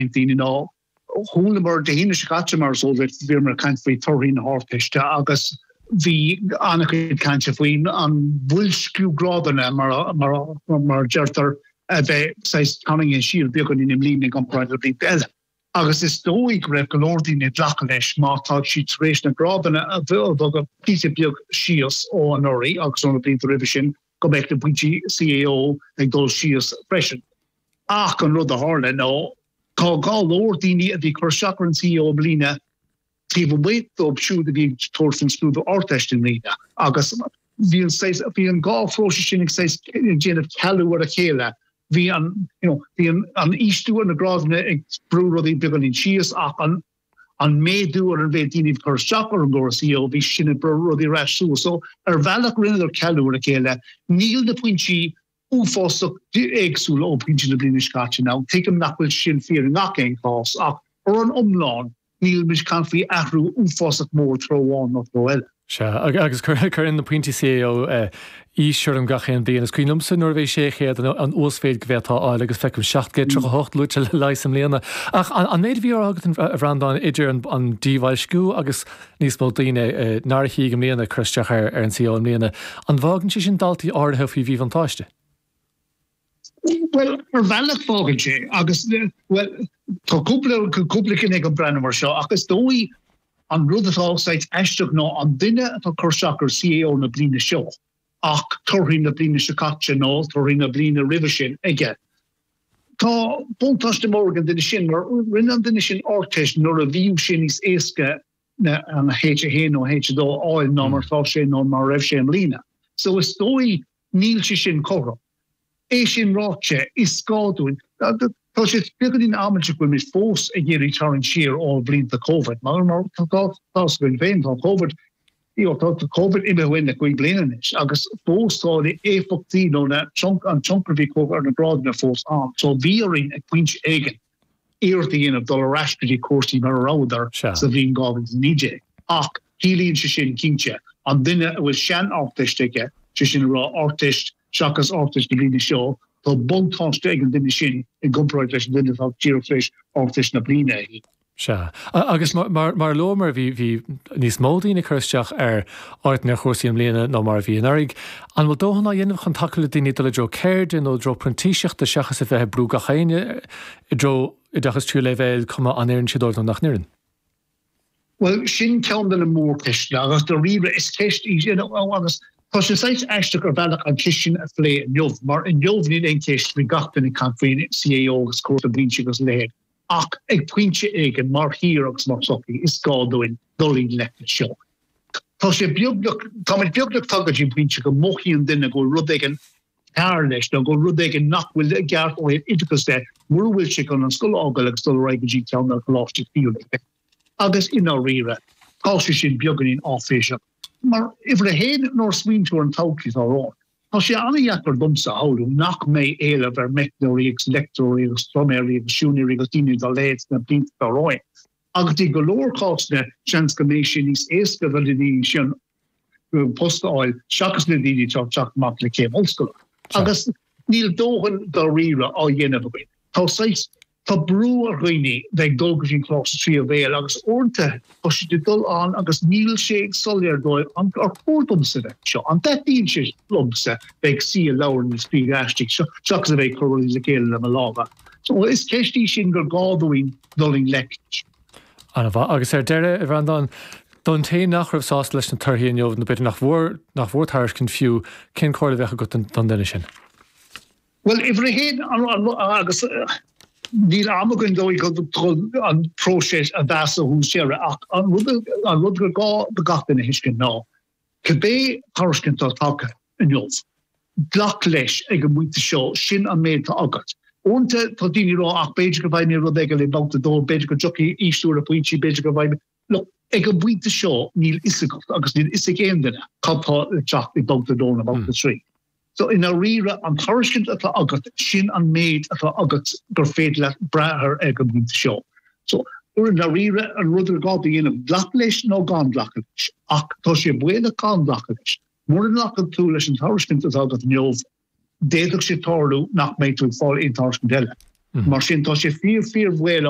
ag daoine nó chualamar Dé hAoine seo caite mar is eol duit, bhíomar ag caint faoi torthaí na hArdteiste agus bhí an-chuid cainte faoi an bhoilsciú grádanna mar a deirtear a bheith saghas tarraingthe siar beagáinín i mbliana i gcomparáid le blianta eile agus is dóigh go raibh go leor daoine ag glacadh leis má tá siad tar éis na grádanna a bhogadh píosa beag síos ó anuraidh agus ó na blianta roimhe sin go mbeadh na pointí CAO ag dul síos freisin. Ach an rud a tharla ná tá go leor daoine a bhí ag cur isteach ar an CAO i mbliana taobh amuigh dóibh siúd a bhí ag tabhairt faoin scrúdú Ardteist i mbliana agus bhí an saghas bhí an dá phróiseas sin ag saghas ag déanamh cealú ar a chéile. Bhí an, you know, bhí an, an ísliú ar na grádanna ag brú rudaí beagáinín síos ach an, an méadú ar an mhéid daoine ag cur isteach ar an gcóras CAO, bhí sin ag brú rudaí ar ais suas. So, ar bhealach rinneadar cealú ar a chéile. Níl na pointí uafásach éagsúla ó pointí na bliana seo caite. Now, tuigim nach bhfuil sin fíor i ngach aon chás ach ar an iomlán níl muid ag caint faoi athrú uafásach mór treo amháin nó treo eile. Sea, agus cuireann na pointí CAO aois orm gach aon bhliain. Is cuimhin liomsa nuair a bhí 600 an uasmhéid go bhféadfá a fháil agus feicim 738 luaite le leigheas i mbliana. Ach an méid a bhí á rá agat, a Bhreandáin, idir an díbhoilsciú agus níos mó daoine nár shuigh i mbliana ag cur isteach ar an CAO i mbliana, an bhfágann sé sin daltaí áirithe faoi mhíbhuntáiste? Bhuel, ar bhealach fágann sé agus, bhuel, tá cúpla, cúpla ceann éagothrom ag breathnú mar seo ach is dóigh an rud atá saghas aisteach ná an duine atá cur isteach ar CAO na bliana seo ach torthaí na bliana seo caite nó torthaí na bliana roimhe sin aige. Tá buntáiste mór ag an duine sin mar rinne an duine sin Ardteist nuair a bhí sé níos éasca na an H1 nó H2 a fháil ná mar atá sé nó mar raibh sé i mbliana. So is dóigh Níl sé sin cothrom. É sin ráite, is gá dúinn, tá sé beagáinín amaideach go bhfuil muid fós ag iarraidh tarraingt siar ó bhlianta Covid, mar tá gá fós againn féin, tá Covid, tá Covid imithe uainn le cúig bliana anois agus fós tá na éifeachtaí nó na, an tionchar a bhí ar na grádanna fós ann. So bhí orainn ag pointe éigin iarracht a dhéanamh dul ar ais go dtí cúrsaí mar a rabhadar sa bhliain 2019. Ach ciallaíonn sé sin, cinnte, an duine a bhfuil sean-Ardteist aige, sé sin a rá, Ardteist seachas Ardteist na bliana seo, tá buntáiste ag an duine sin i gcomparáid leis an duine atá díreach tar éis Ardteist na bliana a fháil. Sea. Agus mar a luamar, bhí níos mó daoine ag cur isteach ar áiteanna ar chúrsaí i mbliana ná mar a bhí anuraidh. An bhfuil dóthain á dhéanamh chun tacú le daoine dul i dtreo ceirde nó i dtreo printíseachta seachas a bheith ag brú gach éinne i dtreo oideachas tríú leibhéil, cuma an oireann sé dóibh nó nach n-oireann? Bhuel, sin ceann de na mórcheisteanna agus daríre is ceist í sin agus tá sé saghas aisteach ar bhealach an cheist sin a phlé inniu mar inniu níl aon cheist faoi gach duine ag caint faoi CAO agus cúrsaí printíseachta agus a leithéid. Ach ag pointe éigin, mar thír agus mar shochaí, is gá dúinn dul i ngleic leis seo. Tá sé beagnach, táimid beagnach tagtha go dtí an pointe go mothaíonn duine go bhfuil rud éigin cearr leis nó go bhfuil rud éigin nach bhfuil i gceart ó thaobh oideachais de, mura bhfuil sé chun an scoil a fhágáil agus dul ar aghaidh go dtí ceann de na coláistí tríú leibhéal. Agus i ndáiríre, tá sé sin beagáinín áiféiseach. Mar uimhir a haon, nuair a smaoiníonn tú ar an todhchaí atá romhainn, Tá sé an-dheacair domsa a shamhlú nach mbeidh éileamh ar meicneoirí agus leictreoirí agus pluiméirí agus siúinéirí agus daoine dá leithéid sna blianta atá romhainn. Agus i go leor cásanna, seans go mbeidh sé níos éasca do na daoine sin post a fháil seachas na daoine atá ag teacht amach le céim ollscoile. Agus níl dóthain i ndáiríre á dhéanamh againn. Tá saghas Tá brú ar dhaoine bheith ag dul go dtí an coláiste tríú leibhéal agus uaireanta tá siad ag dul ann agus níl sé soiléir dóibh an ar chóir domsa bheith anseo, an dtaitníonn sé liomsa bheith ag suí i leabharlann ag scríobh aistí anseo seachas a bheith ag cur rudaí le chéile le mo lámha? So is ceist í sin gur gá dúinn dul i ngleic leis. Ana-mhaith. Agus ar deireadh, a Bhreandáin, don té nach raibh sásta leis na torthaí inniu nó b'fhéidir nach bhfuair tairiscint fiú, cén comhairle a bheadh agat don duine sin? Bhuel, uimhir a haon agus níl am againn dul go dtí an próiseas iomlán ó thús deireadh ach an rud an rud gur gá do gach duine a thuiscint ná cibé tairiscint atá tagtha inniu, glac leis ag an bpointe seo, sin an méid atá agat. Uaireanta tá daoine ag rá ach b'fhéidir go bhfaighidh mé rud éigin i mbabhta a dó, b'fhéidir go dtiocfaidh ísliú ar na pointí, b'fhéidir go bhfaighidh mé. Look, ag an bpointe seo níl fhios agat agus níl fhios ag aon duine cad tá le teacht ag babhta a dó nó babhta a trí. So i ndáiríre an tairiscint atá agat sin an méid atá agat gur féidir leat brath air ag an bpointe seo. So i ndáiríre an rud is gá a dhéanamh glacadh leis nó gan glacadh leis. Ach tá sé baolach gan glacadh leis. Mura nglacfaidh tú leis an tairiscint atá agat inniu d'fhéadfadh sé tarlú nach mbeidh tú ag fáil aon tairiscint eile. Mar sin tá sé fíor fíor bhaolach.